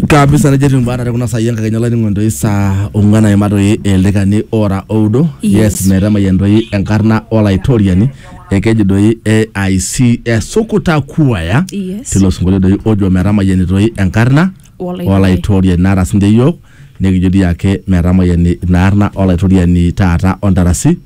kabisa nejo etiu baada tekuna saai enkakenya olainingo entoi saa ong'uan aima toi ildaikani ora oudo yes Yes. metamayian toi enkarna olaitoriani ekeji doi AIC esukuta kuaya Yes. tilo sinkolio doi ojo metamayiani toi enkarna Olaitoriani. olaitoriani naata sinche yiok nikijo dii ake metamayiani ina arna olaitoriani taata ontarasi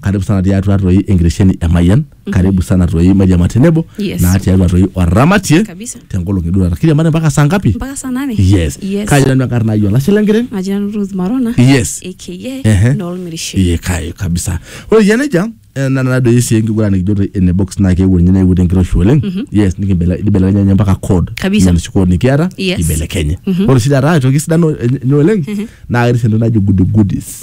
karibu sana tiatua toi enkitesheni e Mayian karibu sana toi mairiama tenebo Yes. naa tiatua toi oramatie Kabisa. tenkolong eduata kiriamari mpaka saa ngapi mpaka saa nane yes yes. kaji nanu enkarna ai olashe lenkiteng maji nanu Ruth Marona yes Ehe. aka noolmirishe Iye kai kabisa. Ore yie nejia eh, na na doi sii enkiguran nikijo te ene box naa keewuo ninye neewuo tenkiroshi oleng. Yes nikibele- nibelekenya ninye mpaka code. Kabisa. Inoshi code nikiata Yes. ibelekenye. Ore sii taata aitoki sidano enye oleng naa ketii sii entoki naji goody goodies.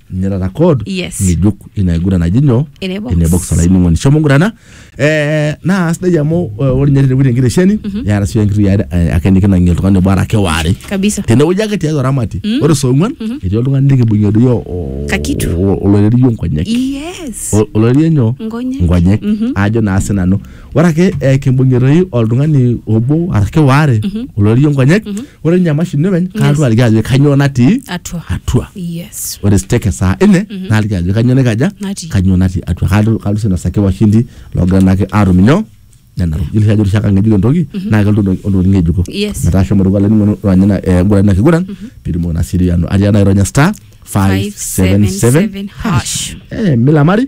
nirara kod Yes. ng'ejuk ina aiguran naji nyoo Ene box. ene box olainining'oni shomo ngurana eh, naa sidai amu eh, ore ninye tenewueji enkitesheni neata sii enkiti are eh, ake nikinang'ie oltung'ani obo arake waare kabisa tenewueji ake tiatua ramati ore soong'uan etii oltung'ani likibung'ie doi o- o- Kakitu. o- oloirerio nkonyek yes O- oloirerio nyoo Nkonyek. nkonyek Mhm. ajo naa sinanu ore ake eh, kimbung'ie toi oltung'ani obo arashu waare oloirie nkonyek ore ninye emashini openy kaalotu aliki ajo kanyoo natii atua atua yes ore stake saa ine naaliki ajo kanyoo naikaja Natii. kanyoo natii atua Kaalo- kaalotu sii ainosaki washindi loogira naake aatum inyoo nena tokitin Yiolo sii ajo ore oshiake ng'ejuk entoki naa kelotu entoki- ontokitin ng'ejuko Yes. metaa shomo dukuya olainining'oni ronya ina eh, nguran ina kiguran piitumoki naa sii dii anu atii enaironya star 577 577 hash. hash Eh, milamari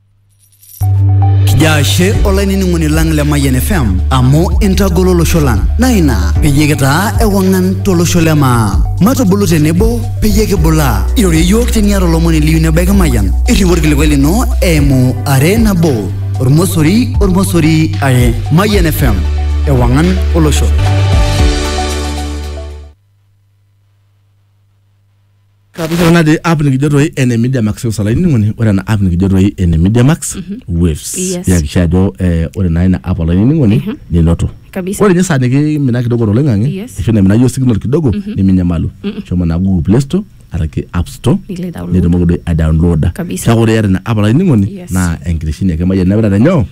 Jaashe olainining'oni lang le Mayian FM amu intagolo olosho lang naa ina peyie kitaa ewang'an tolosho le maa. Matubulu tenebo peyie kibulaa. Irorie iyiook teniata olomoni liyu nebaiki Mayian. Irriu orkilikuai lino eimu are nabo ormosori ormosori are. Mayian FM ewang'an olosho. Kapishana natii app nikijo toi ene Media Max Seus olainining'oni ore ena app nikijo toi ene Media Max Waves. Yes. Nihakikisha ajo eh, ore naa ina app olainining'oni ninoto. Kabisa. Ore ninye saa nikimina kidogo toloing'ang'e Yes. ashu naimina iyiook signal kidogo niminyamalu. Shomo naa Google Play Store araki App Store Nilo ai-download. nitumoki doi aidownloada. Kabisa. Kake ore iyata ina app olainining'oni Yes. naa enkitesheni ake emayian nemirare nyoo?